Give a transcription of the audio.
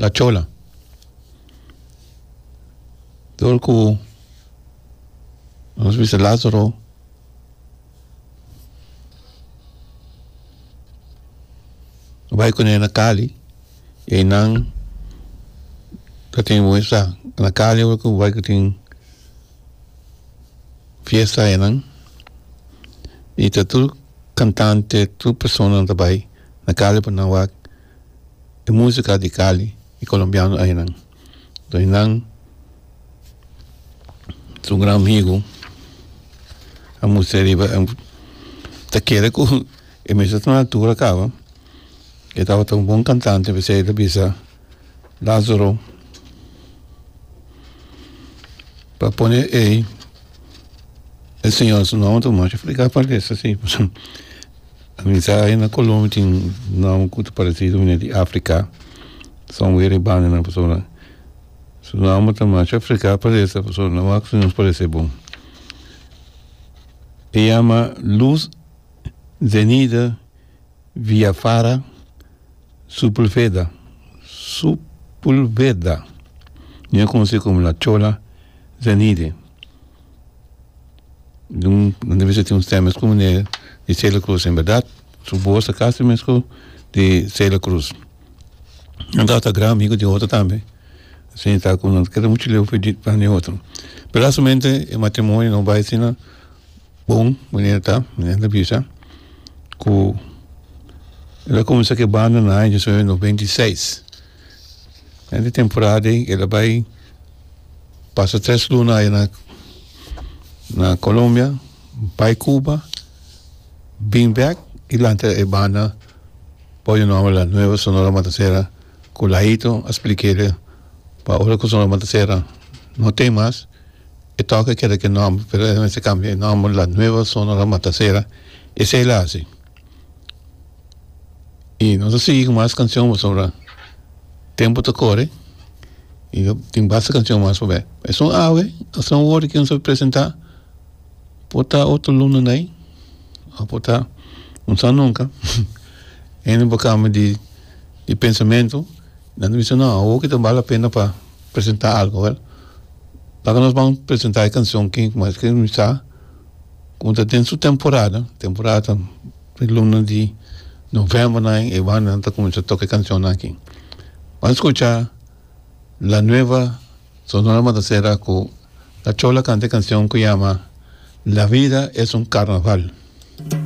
la chola dor ku nos bisa lazaro bai kune na kali e nan ta tin wesa na kali ku bai ku tin fiesta e nan i ta tur kantante tur persona ta bai na kali pa nan wak e musica di Cali y colombiano aynan toy nan su gran amigo a mustra riba ta kere cu e mester tuma altura caba e tabata un bon cantante pesey ta bisa Lazaro pa pone ey e señor su nomber tuma A misa ahi na Colombia tin nomber cu ta parece cu bini di Africa son wer e bandanan pasobra su nomber ta masha Africa parece pasobra no wak nos parece bon e yama luz zenida via fara supulveda supulveda mi a conoci como la chola zenide. Dun nan debe ser tin un stem escu meneer di Celia Cruz en berdad su voz ta casi mesco di Celia Cruz nan ta ata gran amigo di otro tambe asina ta cu nan ta kere mucho leu di pan di otro pe lastimamente e matrimonio no bai asina bon manera ta nan ta bisa cu lo comensa ke banda na aña diecinuebe noventa y seis Dende temporada dei el a bai pasa tres luna aja na na Colombia bai Cuba bin bek y lanta e banda por e nomber la Nueva Sonora Matancera cu Laito a splikele pa ora cu Sonora Matancera no ten mas e toca keda k'e nomber pero el a mester cambia e nomber la Nueva Sonora Matancera esey la hasi. y nos ta sigui cu mas cancion pasobra tempo ta core y no tin basta cancion mas pa bek esun awe esun wor que nos a presenta por ta otro luna de ayi o por ta un sa nunca hende por cambia di di pensamento nan ta bisa no awo que ta bal la pena pa presenta algo wel paca nos ban presenta e cancion que nos a escri sa Como ta den su temporada, temporada ta den luna di novembro na e bandanan ta cuminsha toca e cancion nan aki. Bo a scucha La Nueva Sonora Mataserra cu Cachola canta e cancion cu yama La vida es un carnaval.